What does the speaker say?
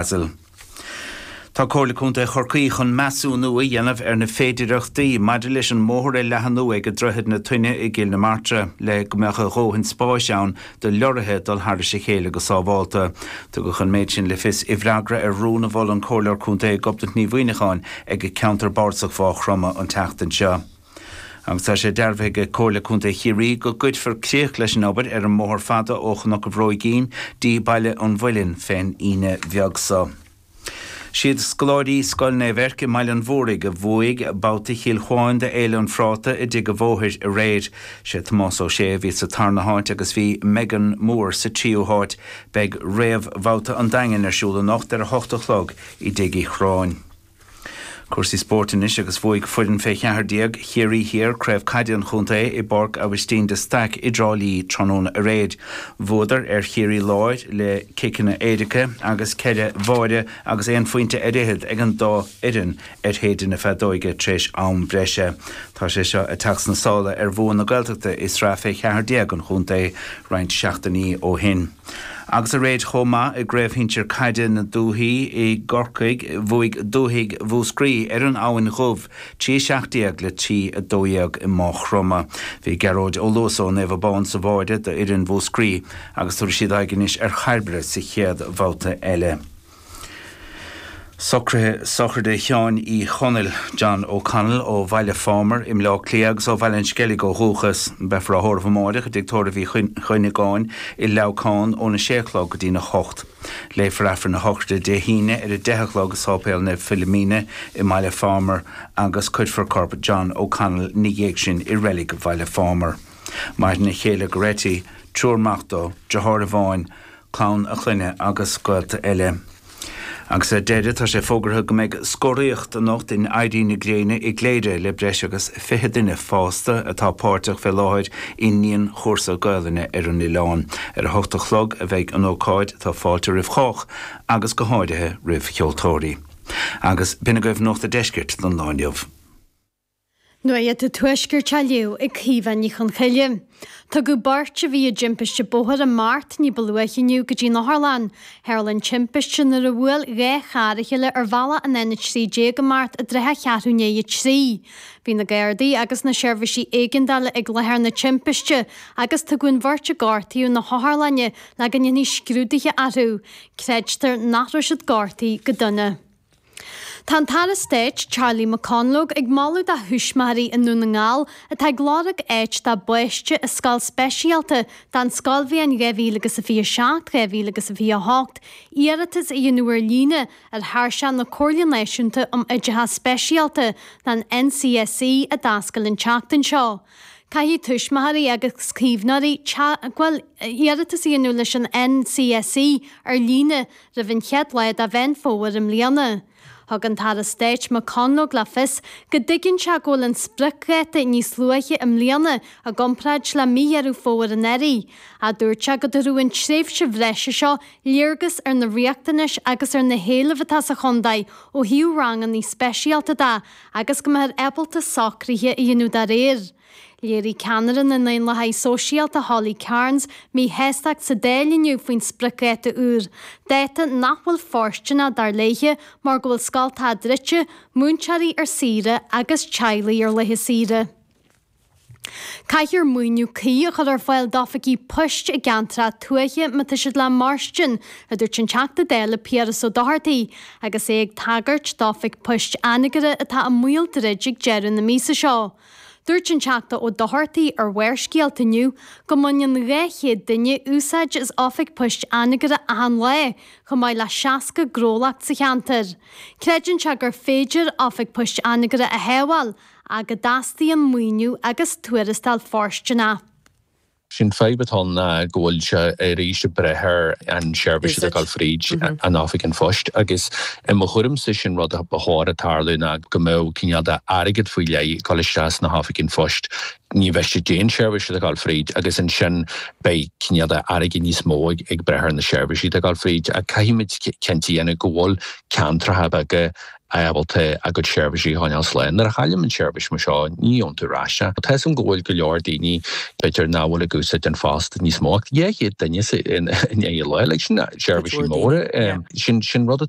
Basel. Tá Comhairle Contae Chorcaí chun measúnú a dhéanamh ar na féidireachtaí maidir leis an mbóthar a leathanú ag Droichead na Toinne i gCill na Martra le go mbeadh a dhóthain spáis ann do leoraithe dul thairis a chéile go sábhálta. Tugadh an méid sin le fios i bhfreagra ar rún a mhol an Comhairleoir Contae Gobnait Ní Mhuimhneacháin ag Ceantar Bardasach Mhá Chromtha an tseachtain seo. agus tá sé dearbhaithe ag Comhairle Contae Chiarraí go gcuirfear críoch leis an obair ar an mbóthar fada ó Chnoc an Bhróigín dtí Baile an Mhuilinn fén Aoine bheag so. Siad scoláirí Scoil Naomh Eirc i mBaile an Mhóraigh a bhuaigh babhta Chill Chuáin de Fhéile an Phráta i dTigh a' Bhóthair aréir. Sé Tomás Ó Sé a bhí sa tarna háit agus bhí Megan Moore sa tríú háit. Beidh réamhbhabhta an Daingin ar siúl anocht ar a hocht a chlog i dTigh Uí Churráin. Cúrsaí spóirt anois agus bhuaigh foireann fé cheathar déag Chiarraí Thiar craobh caide an chontae i bPáirc Aibhistín de Staic i dTrá Lí tráthnóna aréir. Bhuadar ar Chiarraí Láir le ciceanna éirice agus ceithre bháire agus aon phointe ar fhichead ag an dá fhoireann ar shéideadh na feadóige tar éis am breise. Tá sé seo ag teacht sna sála ar bhua na Gaeltachta i sraith fé cheathar déag an chontae roinnt seachtainí ó shin. Agus aréir chomh maith i gcraobh shinsir caide na dúthaí i gCorcaigh, bhuaigh dúthaigh Mhúscraí ar an Abhainn Dhubh, 3 17 le 3 12 i Maigh Chromtha. Bhí Gearóid Ó Luasa ó Naomh Abán sa bháire do fhoireann Mhúscraí agus tabharfaidh siad aghaidh anois ar Chairbre sa chéad bhabhta eile. Socruithe sochraide Sheáin Uí Chonaill, John O'Connell, ó Bhaile Phámar i mBleá Cliath agus ó Bhaile an Sceilg ó dhúchas. Beifear á thórramh amáireach i dtigh tórraimh Uí Chuinneagáin i Leamhcán óna sé a chlog go dtína hocht. Léifear Aifreann a Shochraide Dé hAoine ar a deich a chlog i Sáipéal Naomh Philomena i mBaile Phámar agus cuirfear corp John O'Connell ina dhiaidh sin i reilig Bhaile Phámar. Maireann a chéile Goretti, triúr mac dó, deartháir amháin, clann a chlainne agus gaolta eile. Agus ar deireadh, tá sé fógartha go mbeidh scoraíocht anocht in Éirí na Gréine i gCléire le breis agus 20 duine fásta atá páirteach fé láthair i ndianchúrsa Gaolainne ar an oileán. Ar a hocht a chlog a bheidh an ócáid, tá fáilte roimh chách agus go háirithe roimh cheoltóirí. Agus b'shin agaibh Nuacht a' Deiscirt don lá inniu. Nuacht an Tuaiscirt á léamh ag Caoimhe Ní Chonchoille, tugadh beirt a bhí i dtimpiste bóthair i mBeart ní ba luaithe inniu go dtí'n otharlann. Tharla an timpiste nuair a bhuail dhá charr a chéile ar bhealach an N13 i mBeart i dtrátha cheathrú i ndiaidh a trí. Bhí na Gardaí agus na seirbhísí éigeandála ag láthair na timpiste agus tugadh an bheirt a gortaíodh na hotharlainne le go ndéanfaí scrúduithe orthu. Creidtear nach raibh siad gortaithe go dona. Tá an tAire Stáit, Charlie McConalogue, ag moladh do thuismitheoirí i nDún na nGall atá ag lorg áit dá bpáiste i scoil speisialta don scoilbhliain 2027 2028 iarratas a dhéanamh ar líne ar thairseach na Comhairle Náisiúnta um Oideachas Speisialta, an NCSE, a d'oscail an tseachtain seo. Caithfidh tuismitheoirí agus caomhnóirí teagmháil, iarratas a dhéanamh leis an NCSE ar líne, roimh an chéad lá de Mheán Fómhair i mbliana. Thug an tAire Stáit McConalogue le fios go dtuigeann sé go bhfuil an spriocdháta níos luaithe i mbliana i gcomparáid le mí Dheireadh Fómhair anuraidh, ach dúirt sé go dtabharfaidh an tréimhse bhreise seo léargas ar na riachtanais agus ar na héilimh atá sa chontae ó thaobh ranganna speisialta de agus go mbeifear ábalta socruithe a dhéanamh dá réir. Léirigh ceannaire na nDaonlathaithe Sóisialta Holly Cairns míshástacht sa Dáil inniu faoin spriocdháta úr, dáta nach bhfuil fóirsteanach, dar léithe, mar go bhfuil scoltacha druidte, múinteoirí ar saoire agus teaghlaigh ar laetha saoire. Caithfear maoiniú cuí a chur ar fáil d'oifigí poist i gceantracha tuaithe má tá siad le mairstin, a dúirt an Teachta Dála Piaras Ó Dochartaigh agus é ag tagairt d'oifig poist Anagaire atá i mbaol druid ag deireadh na míosa seo. Dúirt an Teachta Ó Dochartaigh ar Bharrscéalta inniu go mbaineann 200 duine úsáid as oifig poist Anagaire achan lá, chomh maith le 60 gnólacht sa cheantar. Creideann sé gur féidir Oifig Poist Anagaire a shábháil, ach go dteastaíonn maoiniú agus tuarastal fóirsteanach. Sé'n fadhb atá ann ná go bhfuil sé arís ag brath ar an seirbhís atá ag gabháil fríd an Oifig an Phoist agus i mo thuairimse sé'n rud a ba chóir a tarlú ná go mbeadh cineál de airgead faoi leith ag dul isteach sna hOifig an Phoist, ní miste cén seirbhís atá ag gabháil fríd agus ansin beidh cineál de airgead níos mó ag brath ar na seirbhísí atá ag gabháil fríd ach caithfimid cinnte a dhéanamh go bhfuil ceantracha beaga ábalta a gcuid seirbhísí a choinneáil slán. Nuair a chailleann tú seirbhís mar seo, ní fhaigheann tú ar ais é. Tá 'fhios agam go bhfuil go leor daoine, b'fhéidir, nach bhfuil ag úsáid an phost níos mó ach dhá chéad duine sa in aghaidh an lae. Sin seirbhísí móra. Sin rud atá.